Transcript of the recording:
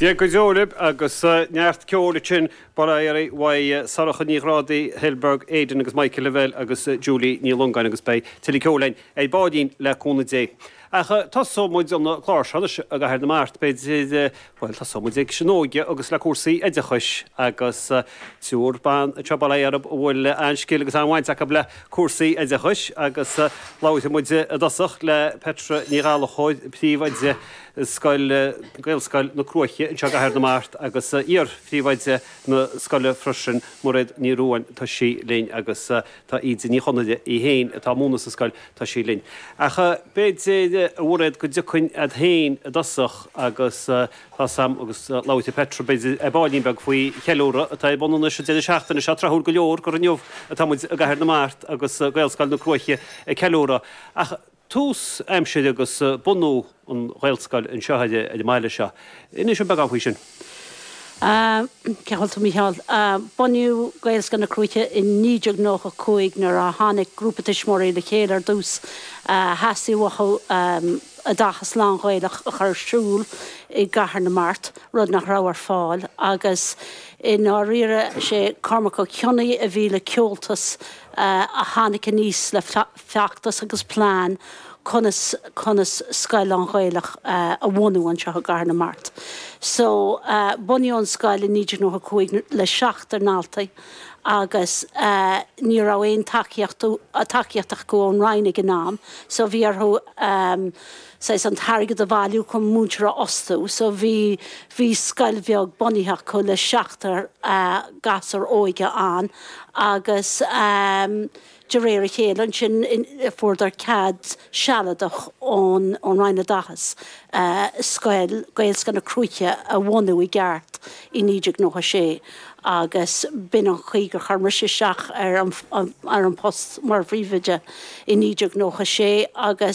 Dia go deo leo agus neart ceoil ansin, bail ó Dhia oraibh, uaidh Sorcha Ní Ghrádaigh, Kilbane, Aidan agus Michael Lavelle agus Julie Ní Longáin agus beidh tuilleadh ceoil againn ar baillín le cúnamh Dé. Ach tosóidh muid an clár seo anois i gCathair na Mart, b'fhéidir, bhuel tosóidh muid leis an óige agus le cúrsaí oideachais agus triúr ban anseo, bail ó Dhia oraibh, a bhfuil an-scil agus an-bhaint acu le cúrsaí oideachais agus labhróidh muid i dtosach le Petra Ní Ghallachóir, príomhoide scoil, Gaelscoil na Cruaiche anseo i gCathair na Mart agus iar-phríomhoide na scoile freisin, Mairéad Ní Ruáin, tá sí linn agus tá Íde Ní Chonaire í féin atá ag múineadh sa scoil, tá sí linn. Ach b'fhéidir, a Mhairéad, go dtiocfainn agat féin i dtosach agus. Tá a fhios agam go labhróidh Petra ar baillín beag faoi cheiliúradh atá ar bun anois an deireadh seachtaine seo. Tráthúil go leor gur inniu atá muid i gCathair na Mart agus Gaelscoil na Cruaiche ag ceiliúradh ach tús aimsire agus bunú an Ghaelscoil anseo ar an mbaile seo. Inis dúinn beagán faoi sin. Cinnte a Mhíchíl. Bunaíodh Gaelscoil na Cruaiche i 1995 nuair a tháinig grúpa tuismitheoirí le chéile ar dtús. Theastaigh uathu. oideachas lán-Ghaelach a chur ar siúl i gCathair na Mart, rud nach raibh ar fáil, agus i ndáiríre sé Cormac Ó Cionnaith a bhí le ceoltas a tháinig aníos le feachtas agus plean conas conas scoil lán-Ghaelach a bhunú anseo i gCathair na Mart. So, bunaíodh an scoil i 1995 le seachtar daltaí. agus ní raibh aon tacaíocht, tacaíocht acu ón Roinn ag an am, so bhí orthu saghas an t-airgead a bhailiú chun múinteoir a fhostú, so bhí, bhí scoil bheag bunaithe acu le seachtar gasúr óg ann agus De réir a chéile ansin fuaireadar cead sealadach ón Roinn Oideachais scoil, Gaelscoil na Cruaiche, a bhunú i gceart i 1996 agus b'in an chaoi gur chuir mise isteach ar an bpost mar phríomhoide i 1996 agus,